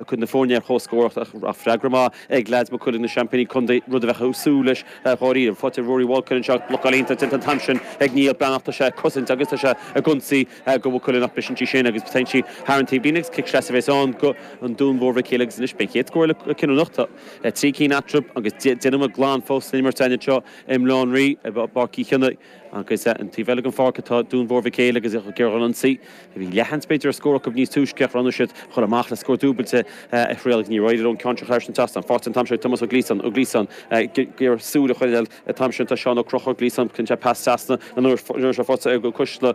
ag cur na foirne ar comhscór ach bhí freagra maith ag leaids Maigh Cuilinn, na seaimpíní contae, rud a bheadh ag súil leis dháiríre. Faighte ag Rory Walkin anseo, blocáil iontach déanta an t-am sin ag Niall Breathnach, tá sé ag cosaint agus tá sé ag ionsaí do Mhaigh Cuilinn ach briseann sí sin agus téann sí thar an taobhlíne agus cic sleasa a bheas ann do Dhún Mhór Mhic Éil agus anois beidh an chéad scór eile cinniúnach, tá trí cinn eatarthu agus deich nóiméad glan fós san imirt againn anseo i mBaile Átha an Rí i bPáirc Uí Chionnaith. Agus an taobh eile den pháirc atá Dún Mhór Mhic Éil agus ag iarraidh ionsaí, a bhí leathsheans b'fhéidir ar scór acu níos túisce ach bhreathnaigh siad a dhul amach le scór dúbailte a thriail. Níor éirigh leo an ceann sin a chur thar an trasnán, faighte an t-am seo ag Tomás Ó Gliasáin, Ó Gliasáin, ag iarraidh súil a choinneáil an t-am sin tá Seán Ó Conchúir, Gliasáin, cuireann sé pas trasna an uair seo faighte ag Coisteala,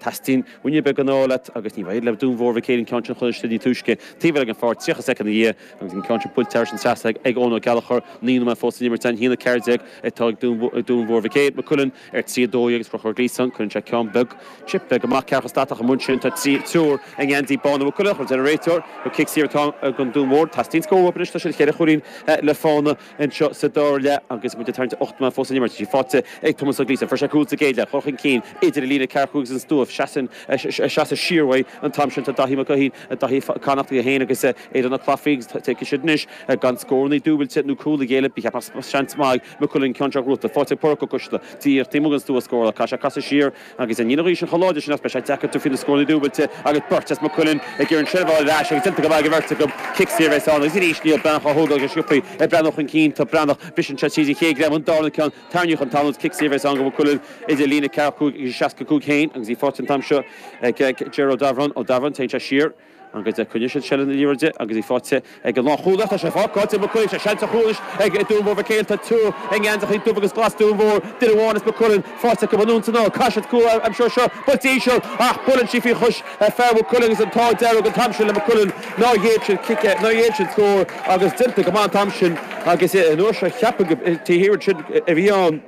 Teastaíonn ruainne beag den ádh leat agus ní raibh sé le Dún Mhór Mhic Éil an ceann sin chuile shade níos túisce. Taobh eile den pháirc, 30 soicind ina dhiaidh agus an ceann sin buailte thar an trasnán ag Eoin Ó Gallchóir, naoi nóiméad fós san imirt. A haon 14 atá ag Dún Mhór Mhic Éil, Maigh Cuilinn ar trí 12 agus Conchúr Gleeson, cuireann sé ceann beag, chip bheag amach cearcha statach an bhun sin. Tá triúr i ngeansaí bána Mhaigh Cuilinn, ach deir an réiteoir gur cic saor atá ag an Dún Mhór. Teastaíonn scór uathu anois, tá siad cheithre chúilín le fána. Anseo sa dara leath, agus muid ag tarraingt ar ocht nóiméad fós san imirt faighte ag Tomás Ó Gleeson. Fuair sé cúl sa gcéad leath, ag gabháil chun cinn idir an líne 45 agus an stua. Ag seasamh siar uaidh an t-am sin tá Daithí Mac Uidhir, Daithí Mac Connachtaigh, é féin agus Aidan Ó Claifí agus tá siad anois gan scórannaí dúbailte nó cúl a ghéilleadh. Ba cheart nach seans maith ag Maigh Cuilinn an ceann seo, a chrochadh faighte ag Pádraic Ó Coisteala, iarracht taobh amuigh den stua a scóráil ach caithfidh sé casadh siar, Agus in aghaidh na gaoithe an chóir láidir sin is beidh sé deacair tabhairt faoi na scóranna dúbailte agus beirt as Maigh Cuilinn ag iarraidh seilbh a fháil ar ais agus déanta go maith ag an mbeirt acu cic saor a bheas ann agus arís Neil Breathnach á thógáil go sciobtha ag breathnú chun cinn tá Breathnach briseann sé tríd an chéad greim ach an darna ceann tarraingíodh chun talún is cic saor a bheas ann do Mhaigh Cuilinn idir líne 45 agus 65 féin agus í faighte an t-am seo ag Ger Ó Dabhráin Ó Dabhráin téann sé siar An fhad is a choinneoidh siad seilbh na liathróide agus í faighte ag an lánchúlaí. Tá sé fágáilte ag Maigh Cuilinn. Tá seans ar chúl anois ag Dún Mhór Mhic Éil. Tá triúr i ngeansachaí dubh agus glas Dún Mhór, duine amháin as Maigh Cuilinn, faighte acu an uain san áir. Caithfidh siad cúl a aimsiú anseo. Buailte íseal ach buaileann sí faoi chois fear Mhaigh Cuilinn agus an t-ádh dearg an t-am sin le Maigh Cuilinn nár ghéill siad cic, nár ghéill siad scór agus déanta go maith an t-am sin agus an uair seo cheapfainn gur taobh thiar ansin a bhí an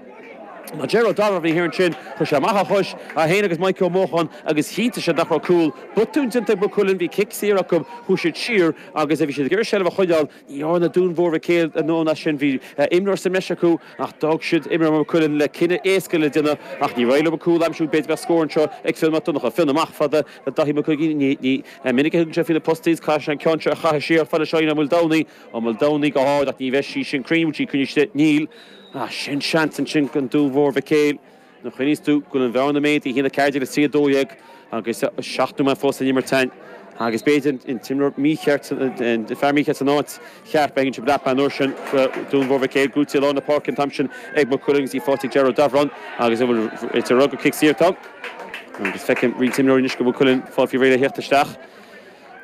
Ná déarfainn Dara a bhí thiar ansin. Chuir sé amach a chois, é féin agus Maidhcí Ó Mócháin, agus chinntigh sé nach raibh cúl, botún déanta ag Maigh Cuilinn. Bhí cic saor acu, chuaigh siad siar agus bhí siad ag iarraidh seilbh a choinneáil. Ní dhearna an Dún Mhór Mhic Éil a ndóthain as sin. Bhí imreoir sa mbreis acu ach d'fhág siad imreoir Maigh Cuilinn le cinneadh éasca le déanamh. Ach níor éirigh leo cúl a aimsiú, b'fhéidir go mbeadh scór anseo ag Fionn Mac Donnacha. Fionn amach chomh fada le Daithí Mac Uiginn. Ní minic a thugann sé faoi na postaí is caithfidh sé an ceann seo a chaitheamh siar chomh fada le Seáinín Ó Maoldomhnaigh. Ó Maoldomhnaigh go hard ach ní bheidh sí sin cruinn, bhfuil sí cruinn? Níl. Ah, sin seans ansin don Dún Mhór Mhic Éil. Nó choinníos tú go bhfuil an bhearna méadaithe idir na cairde agus trí a dó dhéag agus seacht nóiméad fós san imirt ann. Agus b'fhéidir an t-imreoir mícheart, an fear mícheart san áit cheart. B'éigean sibh dreapadh an uair sin go Dún Mhór Mhic Éil. Buaite i lár na páirce an t-am sin ag Maigh Cuilinn agus í faighte ag Ger Ó Dábhoireann agus an bhfuil an réiteoir ag rá gur cic saor atá ann. Agus feicim roinnt imreoirí anois do Mhaigh Cuilinn ag fáil faoi réir le theacht isteach.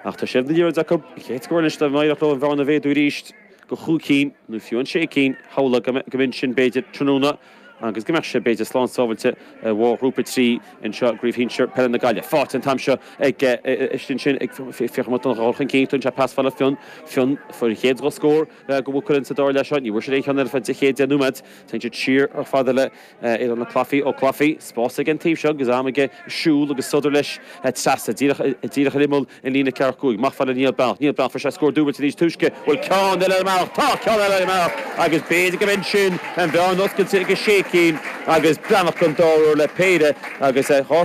Ach tá siad ag iarraidh acu an chéad scór anois dá n-éireodh leo an bhearna a mhéadú arís. go chúig cinn nó fiú an sé cinn, shamhlófá go mb'in sin b'fhéidir tráthnóna agus go mbeadh sé b'fhéidir slán sábháilte ar bharr Ghrúpa 3 anseo i gCraobh Shinsear Peile na Gaillimhe. Faighte an t-am seo istigh ansin ag Fiachra Mac Donncha ag dul chun cinn, tugann sé pas fada le Fionn, Fionn fuair an chéad dhá scór do Mhaigh Cuilinn sa dara leath seo, ní bhfuair siad aon cheann eile ar feadh an chéad deich nóiméad, téann sé siar chomh fada le. Aidan Claffey, ó Claffey. Spás aige an taobh seo agus am aige siúl agus sodar leis trasna, díreach ar imeall an líne ceathracha cúig. Amach chomh fada le Niall Breathnach. Niall Breathnach, fuair sé scór dúbailte níos túisce. Bhfuil ceann eile ar an mbealach? Tá ceann eile ar an mbealach agus b'fhéidir gurb in sin an bhearna oscailte go sé cinn agus Breathnach an dara huair le péire agus dhá